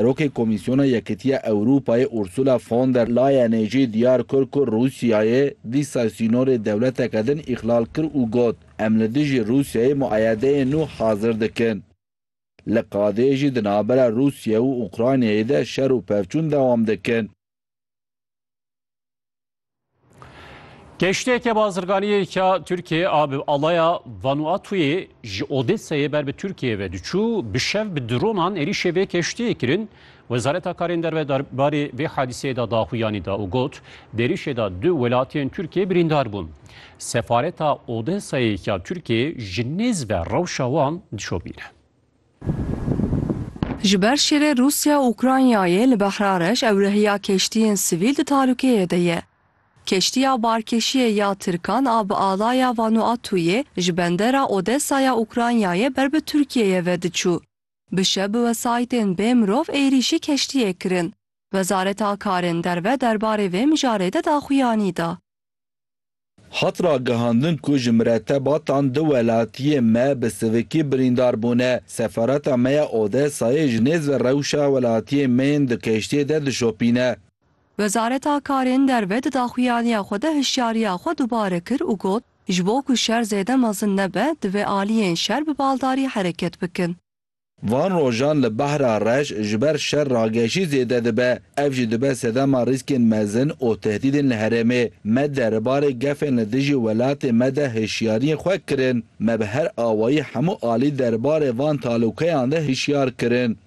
Serokê Komîsyona Yekîtiya Ewrûpayê Ursula von der Leyenê jî diyar kir ku Rûsyayê dîsa sînorê dewleteke din îxlal kir û got, Em li dijî Rûsyayê muayedeyên nû hazir dikin. Li qadê jî di navbera Rûsye û Ukraynayê de şer û pevçûn dewam dikin. Keşteke bazirganiyê ka Tirkiye a bi alaya Vanuatuyê ji Odeseyê ber bi Tirkiye ve diçû bi şev bi dronan êrîşê vê keştiyê kirin. Wezareta Karên Derve derbarê vê hadîseyê de daxuyanî da û got, Di êrîşê de du welatiyên Tirkiyê birîndar bûn. Sefareta Odeseyê ka Tirkiyê ji nêz ve rewşa wan dişopîne. Ji ber şerê Rûsya û Ukraynayê li Behra Reş ewrehiya keştiyên sivîl di talûkeyê de ye. Keştiya barkêşiyê ya Tirkan a bi alaya Vanuatuyê ji bendera Odesa ya Ukraynayê ber bi Tirkiyeyê ve diçû. Bi şev bi wesayîtên bê mirov êrîşî keştiyê kirin. Wezareta Karên Derve derbarê vê mijarê de daxuyanî da. Hat ragihandin ku ji miretebatan du welatiyên me bi sivikî birîndar bûne. Sefareta me ya Odesayê ji nêz ve rewşa welatiyên me yên di keştiyê de dişopîne. Wezareta Karên Derve di daxuyaniya xwe de hişyariya xwe dubare kir û got, Ji bo ku şer zêde mezin nebe, divê aliyên şer bi baldarî hereket bikin. Van rojan li Behra Reş ji ber şer rageşî zêde dibe. Ev jî dibe sedema rîskên mezin û tehdîdên li herêmê. Me derbarê gefên li dijî welatê me de hişyariyên xwe kirin. Me bi her awayî hemû alî derbarê van talûkeyan de hişyar kirin.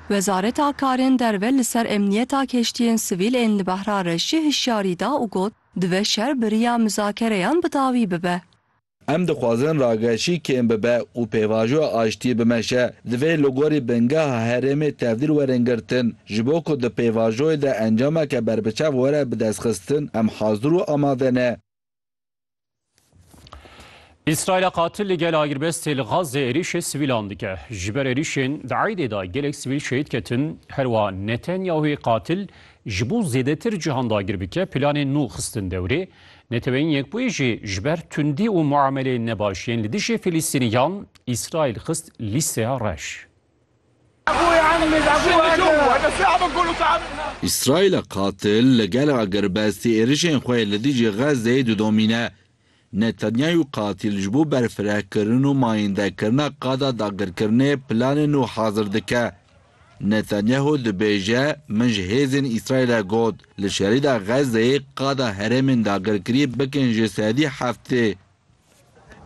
Wezareta Karên Derve li ser emniyeta keştiyên sivîl ên li Behra Reşî hişyarî da û got, Dibe şer bi riya muzakereyan bi dawî bibe. Em dixwazin rageşî kêm bibe û pêvajoya aştiyê bimeşe. Divê li gorî bingeha herêmê tevdîr werin girtin. Ji bo ku di pêvajoyê de encameke berbiçav were bidestxistin, em hazir û amade ne. Îsraîla qatil li gel agirbestê li Gazê êrîşê sivîlan dike. Ji ber êrîşên di Eydê de gelek sivîl şehîd ketin. Herwiha Netanyahuê qatil ji bo zêdetir cihan dagir bike planên nû xistin dewrê. Neteweyên Yekbûyî jî ji ber tundî û muameleyên nebaş yên li dijî Filistîniyan, Îsraîl xist lîsteya reş. Îsraîla qatil li gel agirbestî êrişên xwe li dijî Xezzeyê didomîne. Netanyayû qatil ji bo berfirehkirin û mayîndekirina qada dagirkirinê planên nû hazir dike. Netanyahu dibêje, Min ji hêzên Îsraîlê got, li şerîda Xezzeyê qada herêmên dagirkirî bikin ji sedî heftê.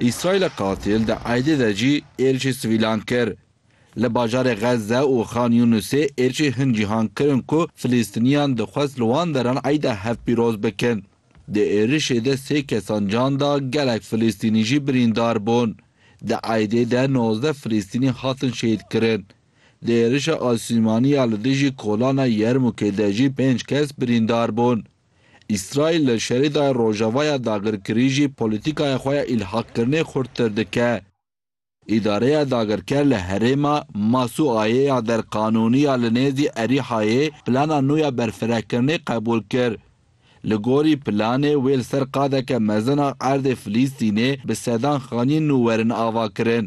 Îsraîla qasîl di erdê de jî êrişê sivîlan kir. Li bajarê Xezze û Xan Yûnusê êrişê hin cîhan kirin ku Filîstîniyan dixwest li wan deran Eîda hevpîroz bikin. Di êrişê de sê kesan can da, gelek Filîstînî jî birîndar bûn. Di erdê de nozdeh Filîstînî hatin şehîdkirin. Di êrişa asîmanî ya li dijî kolana Yermûkê de jî pênc kes birîndar bûn. Îsraîl li Şerîdayê Rojava ya dagirkirî jî polîtîkaya xwe ya îlhaqkirinê xurttir dike. Îdareya dagirker li herêma Masuayê ya derqanûnî ya li nêzî Erîhayê plana nû ya berfirehkirinê qebûl kir. Li gorî planê wê li ser qadeke mezin a erdê Filîstînê bi sedan xanîyên nû werin avakirin.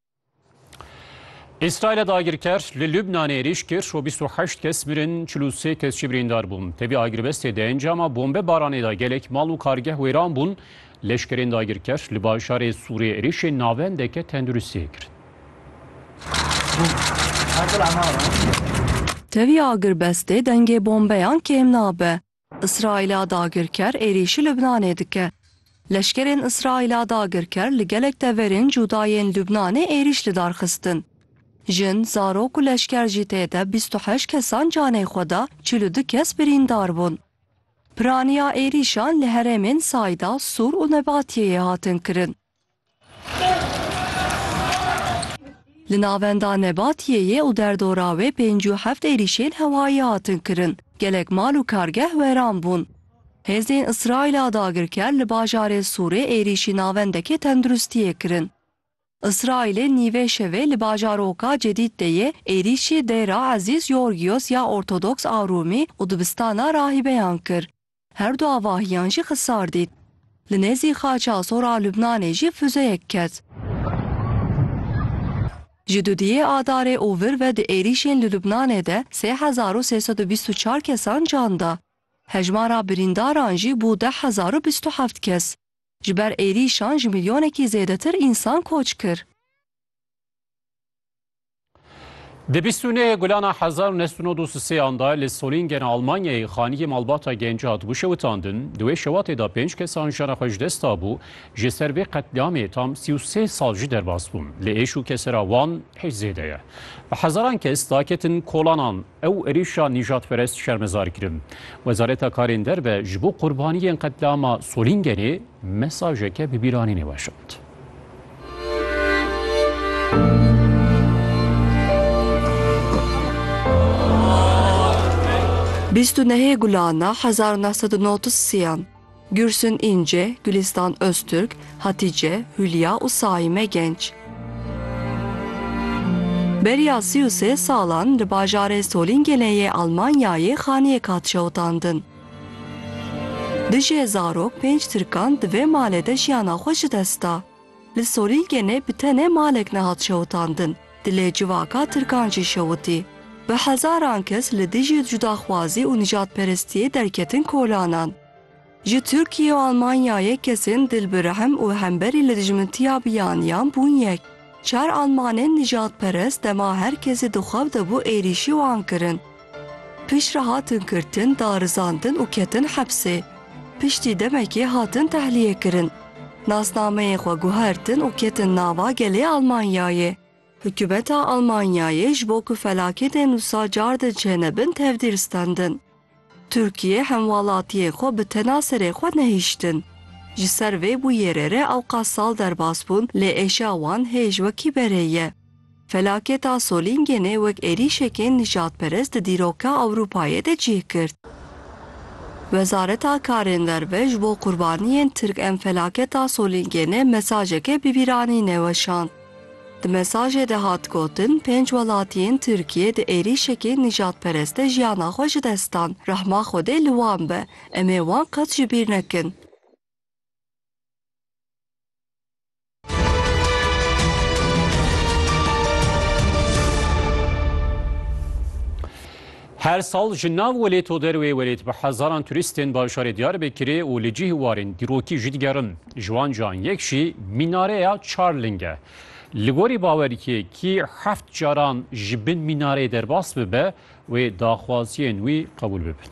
Îsraîlê dagirker li Lubnanê êrîş kir û 28 kes mirin 43 kes jî birîndar bûn. Tevî agirbestê de encama bombe baranê de gelek mal û kargeh wêran bûn. Leşkerên dagirker li bajarê Sûrê êrîşên navendeke tenduristiyê kirin. Tevî agirbestê dengê bombeyan kêm nabe. Îsraîla dagirker êrîşî Lubnanê dike. Leşkerên Îsraîla dagirker li gelek deverên cuda yên Lubnanê êrîş li dar xistin. Jin, zarok û leşker jî tê de bîst û heşt kesan canê xwe da, çil û du kes birîndar bûn. Piraniya êrîşan li herêmên Sayda, Sur û Nebatiyeyê hatin kirin. Li navenda Nebatiyê yê û derdora wê pêncî û heft êrîşên hewayî hatin kirin, gelek mal û kargeh weran bûn. Hêzên Îsraîla dagirker li bajarê Sûrê êrîşî navendekê tenduristiyê kirin. Îsraîlê nîvê şevê li bajaroka Cedîd de yê êrîşî Dêra Ezîz Yorgîos ya Ortodoks a Rûmî û dibistana rahîbeyan kir. Her du avahiyan jî xisar dît. Li nêzî Xaça Sor a Lubnanê jî fuzeyek ket. Ji dudiyê Adarê û vir ve di êrîşên li Lubnanê de sê hezar û sê sed û bîst û çar kesan can da. Hejmara birîndaran jî bû deh hezar û bîst û heft kes. Ji ber êrîşan ji milyonekî zêdetir însan koç kir. Di bîst û nehê gulana hezar û neh sed û nod û si sêyan de li Solingen a Almanyayê xaniyê malbata genc hat wişewitandin. Di wê şewatê de pênc kesan jiyana xwe ji dest dabû. Ji ser vê qetlîamê tam sî û sê sal jî derbas bûn. Lê êş û kesera wan hêj zêde ye. Bi hezaran kes daketin kolanan. Ew êrîşa nîjadperest şermezar kirin. Wezareta Karên Derve ji bo qurbaniyên qetlîama Solingenê mesajeke bi bîranînê weşand. Bîst û nehê gulana hezar û neh sed û neh û siyan, Gülsün Ince, Gülistan Öztürk, Hatice, Hülya û Saime Genç. Beriya sî û sê salan li bajarê Solîngenê yê Almanyayê xaniyek hat şewitandin. Duj e zarok pênc tirkan di vê malê de jiyana xwe ji dest da. Li Solîgenê bi tenê malek nehat şewitandin, dilê civaka tirkan jî şewitî. Bi hezaran kes li dijî cudaxwazî û nijadperestiyê derketin kolanan. Ji Tirkiyê û Almanyayê kesên dil bi rehm û hemberî li dijmintiya biyaniyan bûn yek. Çar Almanên nîjadperest dema her kes ê di xew de bû êrîşî wan kirin. Piştre hatin girtin, darizandin û ketin hepsê. Piştî demekê hatin tehlîyekirin. Nasnameyên xwe guhertin û ketin nava gelê Almanyayê. Hikûmeta Almanyayê ji bo ku felaketên wisa car din çênebin tevdîr stendin. Tirkiye hemwelatiyê xwe bi tena serê xwe nehiştin. Ji ser vê bûyêrê re ewqas sal derbas bûn lê êşa wan hêj wekî berê ye. Felaketa Solîngenê wek êrîşekên nijadperest di dîroka Ewropayê de cih girt. Wezareta Karên Derve ji bo qurbaniyên Tirk em felaketa Solîngenê mesajeke bibîranînê weşand. Di mesajê de hat gotin, pênc welatiyên Tirkiyê di êrîşekî nîjadperest de jiyana xwe ji dest dan. Rehma Xwedê li wan be. Em ê wan qet ji bîr nekin. Her sal ji nav welêt û derwê welêt bi hezaran turîstên bajarê Diyarbekirê û li cih warên dîrokî jî digerin. Ji wan cayan yek jî mînareya çar ling e. Li gorî bawerkê kî heft caran ji bin mînareyê derbas bibe wê daxwaziyên wî qebûl bibin.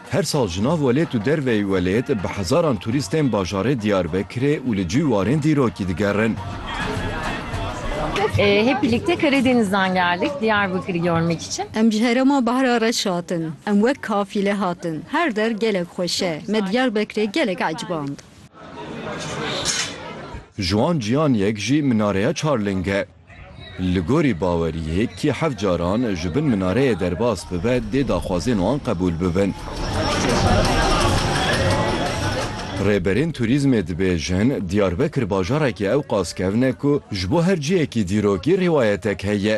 Her sal ji nav welêt û derveyî welêt bi hezaran turîst tên bajarê Diyarbekirê û li cî warên dîrokî digerin. Hep birlikte Karadeniz'den geldik Diyarbakır'ı görmek için. Em ji herêma Bahra reş hatin. Em wek kafîle hatin. Her der gelek xweş e. Me Diyarbekirê gelek eciband. Ji wan cîyan yek jî minareya Çarling e. Li gorî baweriyê kî heft caran ji bin minareyê derbas bibe dê daxwazên wan qebûl bibin. Rêberên turîzmê dibêjin, Diyarbekir bajarekî ewqas kevn e ku ji bo her cihekî dîrokî rîwayetek heye.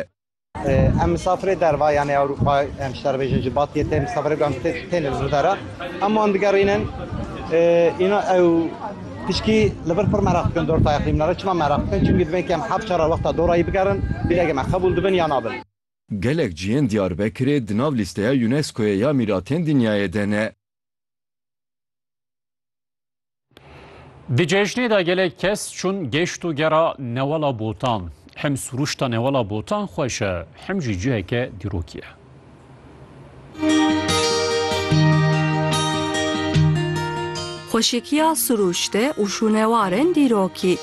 Em misafirê derva yanê Ewropa em ji te re bêjin ji Batiyê tên, misafirê ku em têne li vir de re em wan digerînin. Înan ew. Pişkî li vir pir meraq dikin dor tayê xîmna re. Çima meraq dikin? Çimkî dibên kem heft çar re wexta dorayî bigerin, bîrege me qebûl dibin ya nabin. Gelek cihên Diyarbekirê di nav lîsteya UNESCO'yê ya mîratên dinyayê de ne. Di cejnê de gelek kes çûn geşt û gera Newala Botan. Hem sûruşta Newala Botan xweş e hem jî ciheke dîrokî ye. Xweşikiya sirûşte û şûnewarên dîrokî.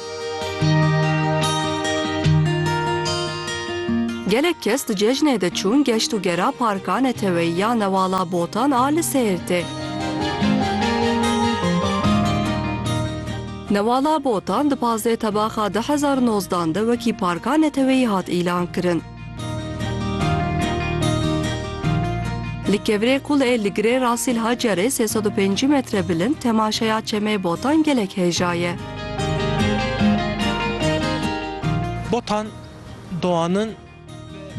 Gelek kes di cejnê de çûn geşt û gera parka neteweyî ya Newala Botan a li Sêrtê. Newala Botan di pazdeh tebaxa du hezar û nozdan de wekî parka neteweyî hat îlankirin. Li kevirê qul ê li girê Rasîl Hacerê sê sed û pêncî metre bilind temaşeya çemê Botan gelek hêja ye. Botan Doğan'ın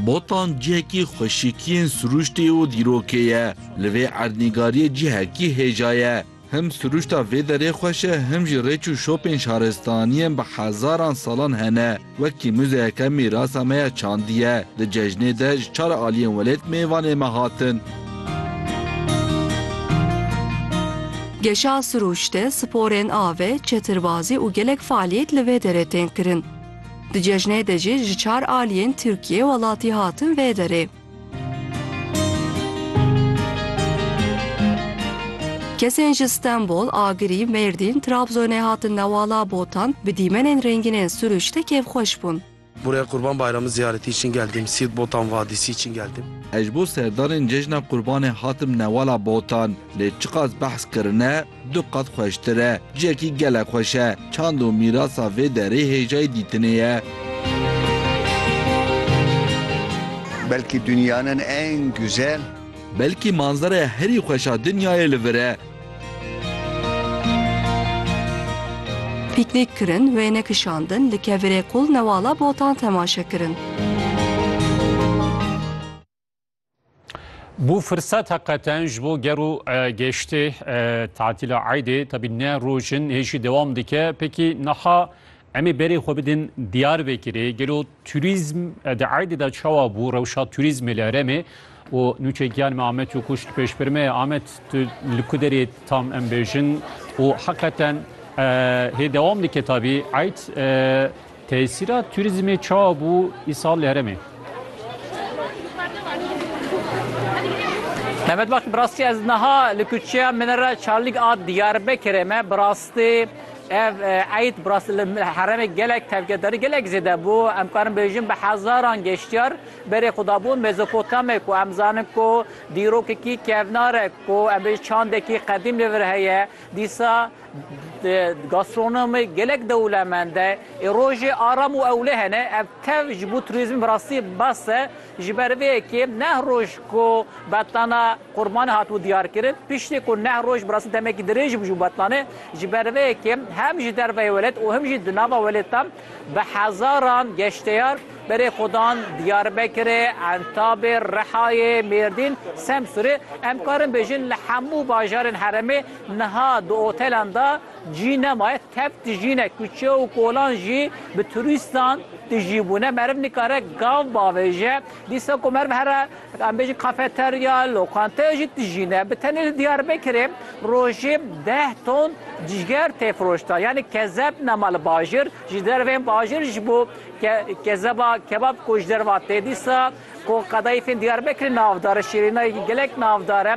Botan cihekî xweşikiyên sirûştê û dîrokê ye. Li vê erdnîgariyê cihekî hêja ye. Him sirûşta vê derê xweş e him jî rêç û şopên şaristaniyên bi hezaran salan hene. Wekî muzeyeke mîrasa me ya çandî ye. Di cejnê de ji çar aliyên welêt mêvanê me hatin. Geşa sirûşte, sporên avê, çetirbazî û gelek faaliyet li vê derê tên kirin. Di cejnê de jî ji çar aliyên Tirkiyê welatî hatin vê derê. Kesên ji Stenbol, Agirî, Mêrdîn, Trabzonê hatin newala Botan, bi dîmenên rêngînên sirûşte kêfxweş bûn. Buraya Qurban Bayramı ziyareti için geldim. Siirt Botan Vadisi için geldim. Ez ji bo serdarên cejna Qurbanê hatim newala Botan. Lê çiqas behs kirine, Du qat xweştir e. Ciyekî gelek xweş e. Çand û mîrasa vê derê hêjayî dîtinê ye. Belkî dunyanin ên guzel. Belkî manzeraya herî xweş a dinyayê li vir e. Pîknîk kirin, wêne kişandin, li kevirê qûl newala botan temaşe kirin. Bu fırsat hakikaten ji bo ger û e, geştê e, tatîla Eydê tabi ne rojin hêjî devam dike. Peki naha emê berê xwe bidin diyar vekirê gelo turizm e, de Eydê da çawa bu rewşa turizmê li Eremê o nûçe giyan me Ahmet û kuş pêş bir me Ahmet tu li ku derê tam em bêjin û hakikaten e, hê devam dike tabi Eyd e, Tesîra turîzmê çawa bû îsal li herêmê? Mehmet bak bi rastî ez niha li kuçeya min re Çarlîk a Diyarbekirê me bi rastî ev eyd bi rastî li herêmê gelek tevgerdarî gelek zêde bû. Em karin bêjin bi hezaran geştyar berê xwe dabûn Mezopotamê ku em zanin ku dîrokekî kevnar e ku em bêjin çandekî qedîm li vir heye. Dîsa Di gastronomê gelek dewlemend e. Ê rojê aram û ewle hene. Ev tev ji bo turîzmê bi rastî bes e. Ji ber vê yekê neh roj ku betlana qurbanê hatibû diyarkirin. Piştî ku neh roj bi rastî demekî dirêj bû ji bo betlanê. Ji ber vê yekê hem ji derveyê welêt û him jî di nava welêtan bi hezaran geştyar berê xwe dan Diyarbekirê, Entabê, Rihayê, Mêrdîn, Semsûrê. Em karin bêjin li hemû bajarên herêmê Niha di otelan de cî nemaye, tev tijîne, kuçe û kolan jî bi turîstan tijî bûne. Meriv nikare gav bavêje. Dîsa ku meriv here em bêjin kafeterya, lokanteyê jî tijîne. Bi tenê li Diyarbekirê rojê deh ton cîger tê firoştan. Yanî kezeb nema li bajir. Ji derveyên bajir ji bo kezeba kebab ku ji derve tê dîsa ku qedayîfên Diyarbekirê navdar e, şîrînayekî gelek navdar e.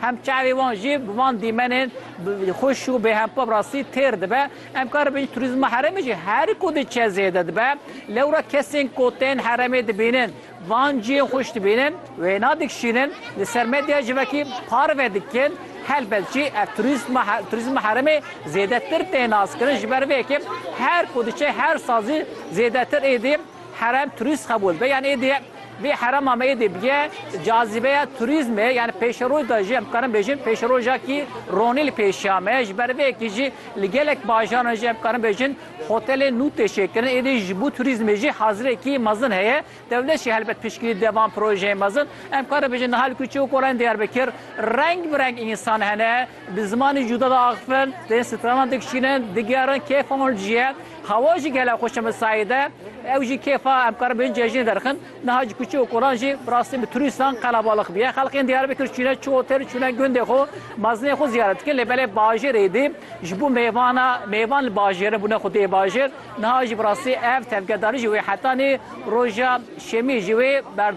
Hem çavê wan jî bi van dîmenên xweş û bêhempa bi rastî têr dibe. Em karibin turîzma herêmê jî her ku diçe zêde dibe. Lewra kesên ku tên herêmê dibînin van cihên xweş dibînin, wêna dikişînin, li ser medya civakî parve dikin. Helbet jî ev turîzma herêmê zêdetir tê naskirin ji ber vê yekê her ku diçe her sal jî zêdetir êdî herem turîst qebûl dibe yan êdî Vê herema me yê dê bîye cazîbeya turîzmê yanî pêşeroj de jî em karin bêjin pêşerojakî ronî li pêşiya me ye. Ji ber vê yekê jî li gelek bajaran de jî em karin bêjin hotelên nû tê çêkirin. Êdî ji bo turîzmê jî hazirêkî mezin heye. Dewlet jî helbet piştgirî dide van projeyên mezin. Em karin bêjin niha li Kuçe û Kolayên Diyarbekir reng bi reng însan hene. Bi zimanê cuda de axivin, tên stranan dikişînin, digerin, kêfa wan ciye. Hewa jî gelek xweş e Misayê de. Ew jî kêfa em karin bêjin cejnê derxin. Niha ji kuçe û kolan jî bi rastî bi turîstan qelebalix bûye. Xelkên Diyarbekir çûne çi otel, çûne gundê xwe, mezinên xwe ziyaret dikin. Lê belê bajêr êdî ji bo mêvan e. Mêvan li bajêr in, bûne xwe dê bajêr. Niha jî bi rastî ev tevgedarî ji wê hetanî roja şemiyê ji wê berdana.